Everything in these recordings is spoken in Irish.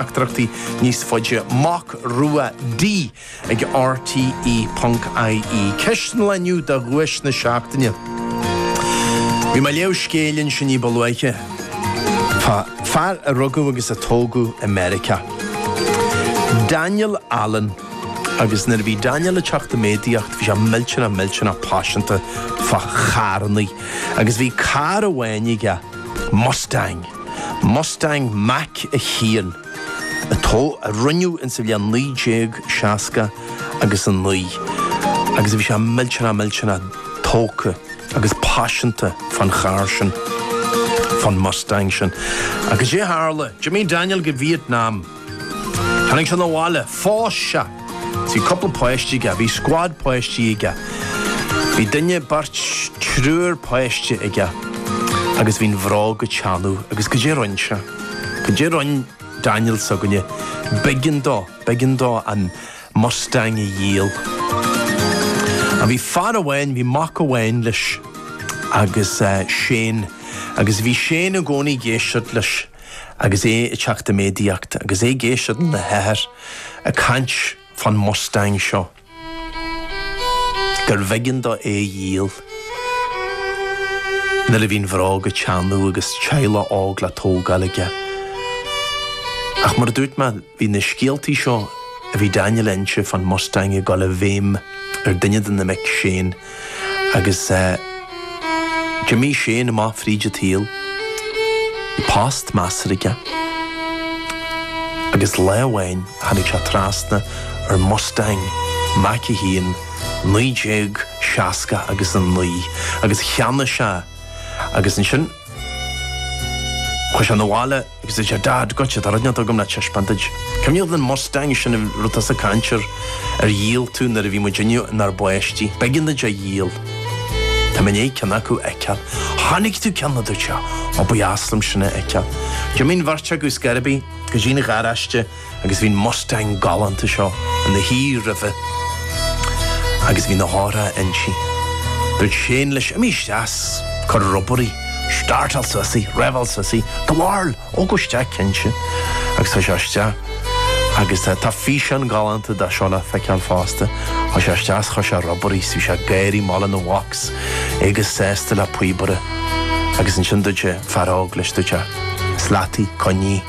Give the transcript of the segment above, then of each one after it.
Teachtaireachtaí níos faide, Mac Rua D ag RTÉ.ie. Ceist an lae inniu do dhuais na seachtaine. Bhí mé ag léamh scéil ansin ní ba luaithe fá fear a rugadh agus a tógadh i Meiriceá. Daniel Allen. Agus nuair a bhí Daniel ag teacht i méadaíocht bhí sé millteanach millteanach paiseanta fá charrannaí. Agus bhí carr amháin aige, Mustang. Mustang Mach 1, a rinneadh ins sa bhliain 1969 agus bhí sé millteanach millteanach tógtha agus paiseanta fán charr sin, fán Mustang sin. Agus goidé a tharla, d'imigh Daniel go Vietnam, Tháinig sé 'na bhaile. Phós sé. Bhí cúpla páistí aige. Bhí scuad páistí aige. Bhí duine, beirt, triúr páiste aige. Agus bhí an bhróg ag teannadh. Agus goidé rinn sé? Goidé rinn Daniel s'againne? B'éigean dó, b'éigean dó an mustang a dhíol. Ach bhí fear amháin, bhí mac amháin leis agus eh, Shane. Agus bhí Shane i gcónaí ag éisteacht leis. Agus é ag teacht i méadaíocht, agus é ag éisteacht lena hathair ag caint fán Mustang seo, gurbh éigean dó é a dhíol, nuair a bhí an bhróg ag teannadh agus teaghlach óg le tógáil aige. Ach mar a dúirt mé, bhí na scéaltaí seo a bhí Daniel a inse fán Mustang ag dul i bhfeidhm ar duine de na mic, Shane, Agus d'imigh Shane amach fríd an tsaol, post measartha aige. Agus lá amháin tháinig sé trasna ar Mustang Mach 1 1960 agus 9 agus cheannaigh sé agus ansin chuaigh sé 'na bhaile. Agus deir sé, Dad, Goitse, tá rud inteacht agam le taispeáint duit. Cuimhin leat an Mustang sin a raibh tusa ag caint air a dhíol tú nuair a bhí muidinne inár bpáistí. B'éigean duit é a dhíol. Tá mé i ndiaidh ceann acu a fheiceáil. Tháinig tú ceann na duit seo. Ó, ba dheas liom sin a fheiceáil. D'imigh an bheirt acu ar scor ar bith go dtí an gharáiste. agus bhí an mustang galánta seo ina shuí roimhe agus bhí na heochracha inti. Dúirt Shane leis, Imigh isteach 's cuir ar obair í, startáil suas í, reibheáil suas í, gabháil, ó gabh isteach cinnte. Agus chuaigh sé isteach agus tá físeán galánta de seo le feiceáil fosta, chuaigh sé isteach 's chuir sé ar obair í 's bhí sé ag gáirí anall lena mhac 's é chomh sásta le píobaire. Agus ansin dúirt an fear óg leis, dúirt sé, is leat í, coinnigh.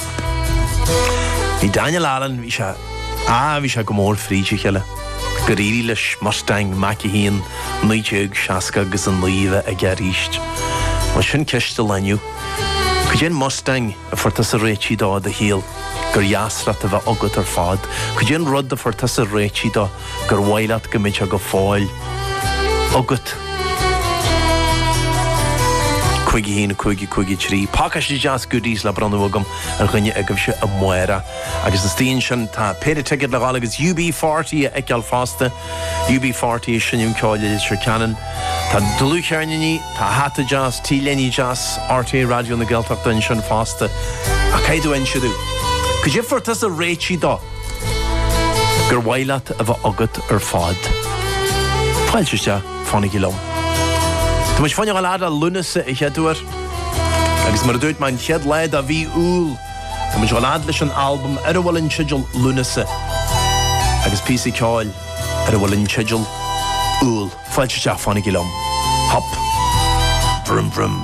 Bhí Daniel Allen, bhí sé, ah bhí sé go mór fríd a chéile gur éirigh leis Mustang Mach 1 1969 a bheith aige aríst. Bhuel sin ceist don lá inniu. Cad é an Mustang a fuair tusa réitithe de i do shaol gur dheas leat a bheith agat ar fad? Cad é an rud a fuair tusa réití do? gur mhaith leat go mbeadh sé go fóill agat. cúig a haon, cúig a cúig a trí. Pacáiste deas Goodies le bronnadh agam ar dhuine agaibhse amárach. Agus istigh ansin, tá péire ticéad le dhul agus UB40 a fheiceáil fosta. UB40 ag seinm ceoil i Leitir Ceanainn. Tá dlúthcheirníní, tá hata deas, T-léine dheas RTÉ Raidió na Gaeltachta ansin fosta. Ach caithfidh tú inse domh cad é a fuair tusa réitithe de! Gur mhaith leat a bheith agat ar fad. Fáilte isteach, fanaigí liom. Tá muid fá choinne a dhul a fhad le Lúnasa a chéaduair, agus mar a dúirt mé an chéad lá de mhí Iúil, tá muid ag dul a fhad leis an albam ar a bhfuil an teideal Lúnasa, agus píosa ceoil ar a bhfuil an teideal Iúil. Fáilte isteach, fanaigí liom. Hop! Vroom vroom!